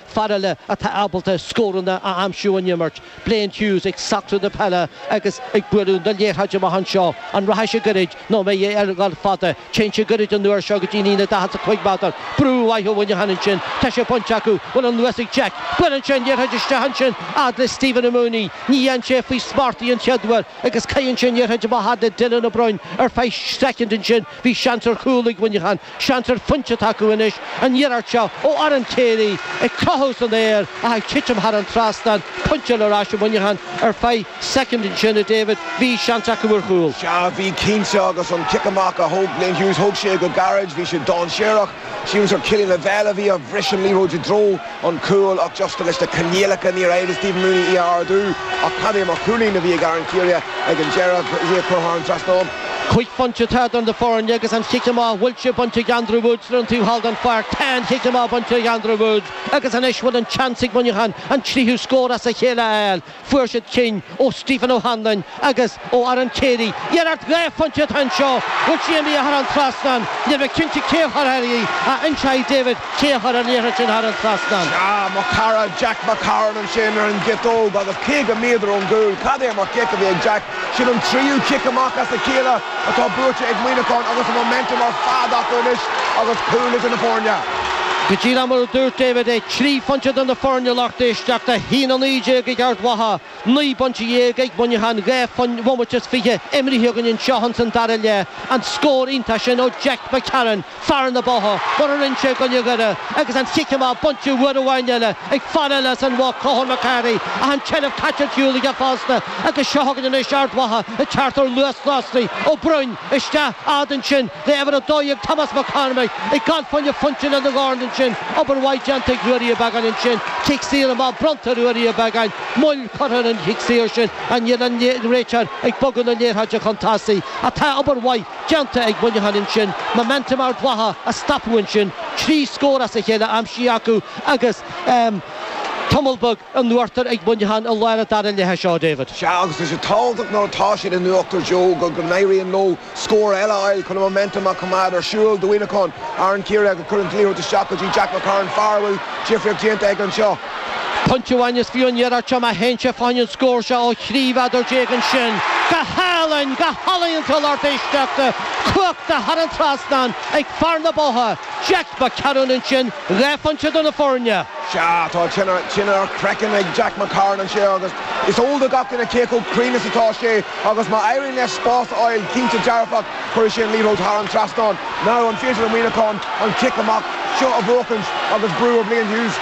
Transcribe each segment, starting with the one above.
Fear eile atá ábalta scóranna a aimsiú in imirt, Blaine Hughes, ag socrú na peile agus ag bualadh na liathróide amach anseo. An rachaidh sé goirid nó an mbeidh sé ag gabháil fada? Téann sé goirid an uair seo go dtí an líne daichead is cúig mheadar. Brú maith ó Mhuineachán ansin. Tá sé bainte acu. Bhfuil an luas ag Jack. Buaileann sé an liathróid isteach ansin fhad le Stephen Mooney. Ní fhaigheann sé faoi smacht í an chéad uair agus caitheann sé an liathróid amach fhad le Dylan Ó Broin ar feadh soicind ansin. Bhí seans ar chúl ag Muineachán, seans ar phointe atá acu anois, an iarracht seo ó Aaron Carey ag crochadh san aer ach ag titim thar an trasnán, pointe eile ar ais ag Muineachán ar feadh soicind ansin, a David, bhí seans acu ar chúl. Sea, bhí cinnte, agus an cic amach a thóg Blaine Hughes, thóg sé go gairid, bhí sé dainséarach. Shíleas gur Cillian Lavelle a bhí a bhris an liathróid i dtreo an chúil ach just leis na coinníollacha níor éirigh le Stephen Mooney í a ardú ach cad é mar chúilín a bhí ag Aaron Carey ag an deireadh agus í a chur thar an trasnán. Cúig phointe atá idir na foirne agus an chic amach bhfuil sé bainte ag Andrew Woods ar an taobh thall den pháirc. Tá an chic amach bainte ag Andrew Woods agus anois bhfuil an tseans ag Muineachán an tríú scór as a chéile a fháil. Fuair siad cinn ó Stephen O'Hanlon agus ó Aaron Carey. Iarracht dhá phointe atá anseo. Bhfuil sí imithe thar an trasnán. Níl mé cinnte cé a chuir thar í, ach inseoidh David cé a chuir an liathróid sin thar an trasnán. Sea, mo chara Jack McCarron ansin ar an gciotóg agus 50 méadar ón gcúl. Cad é mar chic a bhí ag Jack. Sin an tríú cic amach as a chéile atá buaite ag Muineachán agus an momentum ar fad acu anois agus cúl idir na foirne. Go díreach mar a dúirt David é, trí phointe idir na foirne, a lucht éisteachta, a haon 19 ag Ard Mhacha, naoi bpointe dhéag ag Muineachán, dhá bhomaite is fiche imrithe againn anseo ins an dara leath, an scór iontach sin ó Jack McCarron. Fear na Botha, mar a rinne sé i gcoinne Dhoire agus an chic amach bainte uair amháin eile ag fear eile as an Bhoth, Conchúr Mac Cárthaigh, ach an tseilbh caite ar shiúl aige fosta agus seo chugainn anois Ard Mhacha ag teacht ar luas lasrach, Ó Broin, isteach a fhad ansin le uimhir 12 Tomás Mac Cormaic ag gabháil fá choinne pointe lena dhorn ansin, obair mhaith déanta ag Ruairí Ó Beagáin ansin, cic saor amach bronnta ar Ruairí Ó Beagáin, moill curtha ar an chic saor sin ach níl an réiteoir ag bogadh na liathróide chun tosaigh ach tá obair mhaith déanta ag Muineachán ansin momentum Ard Mhacha a stopadh ansin, trí scór as a chéile aimsithe acu agus tamall beag in uachtar ag Muineachán i lár an dara leithe seo, David. Sea, agus tá sé tábhachtach nuair atá siad in uachtar, Joe, go n-éiríonn leo scór eile a fháil chun an momentum a choimeád ar siúl. Do Mhuineachán, Aaron Carey agus cuireann an liathróid isteach go dtí Jack McCarron, fear a bhfuil difríocht déanta aige anseo. Pointe amháin is fiú an iarracht seo má théann sé fá choinne an scór seo ó thrí mhéadar déag ansin. Go hálainn, go healaíonta a lucht éisteachta, cuachta thar an trasnán ag fear na Botha, Jack McCarron ansin, dhá phointe idir na foirne. Sea, tá tine ar chraiceann ag Jack McCarron anseo agus is eol do gach duine cé chomh cruinn is atá sé agus má éiríonn leis spás a fháil, cinnte dearfach, Cuirfidh sé an liathróid thar an trasnán. Now an féidir le Muineachán an cic amach seo a bhuachaint agus brú ar Blaine Hughes?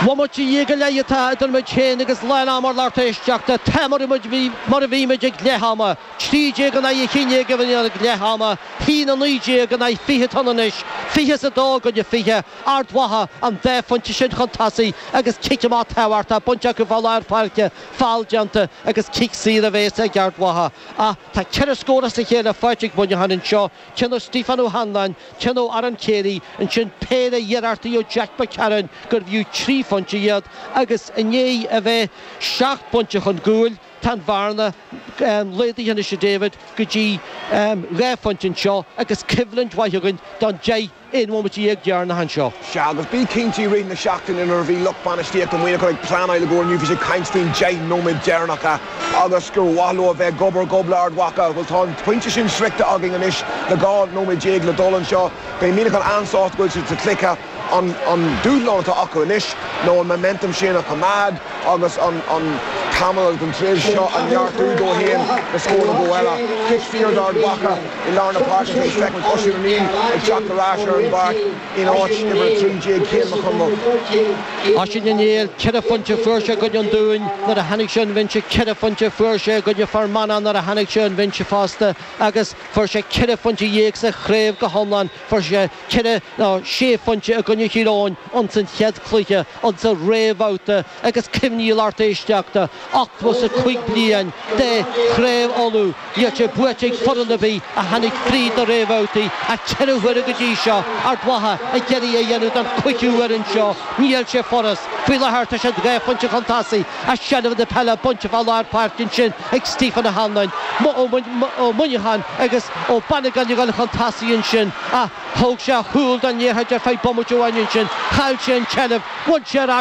Bhomaite dhéag go leith atá idir muid féin agus lán ama, a lucht éisteachta, tá muid mar a bhí muid ag leath ama, trí déag in aghaidh a haon déag a bhí ag leath ama, haon a naoi déag in aghaidh fiche atá ann anois, fiche is a dó i gcoinne fiche, Ard Mhacha, an dá phointe sin chun tosaigh agus cic amach tábhachtach bainte acu fá lár páirce, foul déanta agus cic saor a bhéas ag Ard Mhacha. Ach tá ceithre scór as a chéile faighte ag Muineachán anseo, ceann ó Stiofán Ó hAnluain, ceann ó Aaron Carey, ansin péire iarrachtaí ó Jack McCarron gurbh fhiú trí phointe iad agus i ndiaidh a bheith seacht bpointe chun cúil, tá an bhearna laghdaithe anois a David go dtí dhá phointe anseo agus coimhlint mhaith againn don deich 1 bhomaite dhéag deireanach anseo. Sea, agus bí cinnte i rith na seachtaine nuair a bhí lucht bainistíochta Mhuineacháin ag pleanáil i gcomhair inniu bhí siad ag caint faoin 10 nóiméad deireanacha agus gur mhaith leo a bheith gob ar ghob le Ard Mhacha. Bhuel, tá an pointe sin sroichte againn anois le 12 nóiméad le dul anseo. Beidh Muineachán an-sásta go bhfuil siad sa chluiche. An dúshlán atá acu anois ná an momentum sin a choimeád. agus an tamall agus an tréimhse seo a neartú dóibh féin le scór nó dhó eile. Cic saor d'Ard Mhacha i lár na páirce is feicim Oisín Ó Néill ag teacht ar ais ar an bpáirc in áit uimhir 13, Cian Mac Conmhaoil. Oisín Ó Néill, ceithre phointe fuair sé i gcoinne an Dúin nuair a tháinig sé an bhinse, ceithre phointe fuair sé i gcoinne Fhear Manach nuair a tháinig sé ón bhinse fosta agus fuair sé ceithre phointe dhéag sa chraobh go hiomlán, fuair sé. ceithre nó sé phointe i gcoinne Thír Eoghain insan chéad chluiche insa réamhbhabhta agus cuimhnigh, a lucht éisteachta, ochtó is a cúig bliain de Chraobh Uladh níl sé buaite ag foireann ar bith a tháinig fríd na réamhbhabhtaí ach ceithre huaire go dtí seo Ard Mhacha ag iarraidh a dhéanamh don chuigiú uair anseo níl sé furast faoi láthair tá siad dhá phointe chun tosaigh ach seilbh na peile bainte fá lár páirce ansin ag Stephen O'Hanlon ó Mhuineachán agus Ó Banagáin ag dul chun tosaigh ansin ach thóg sé a shúil den liathróid ar feadh bomaite amháin ansin, chaill sé an tseilbh, bhain sé ar ais,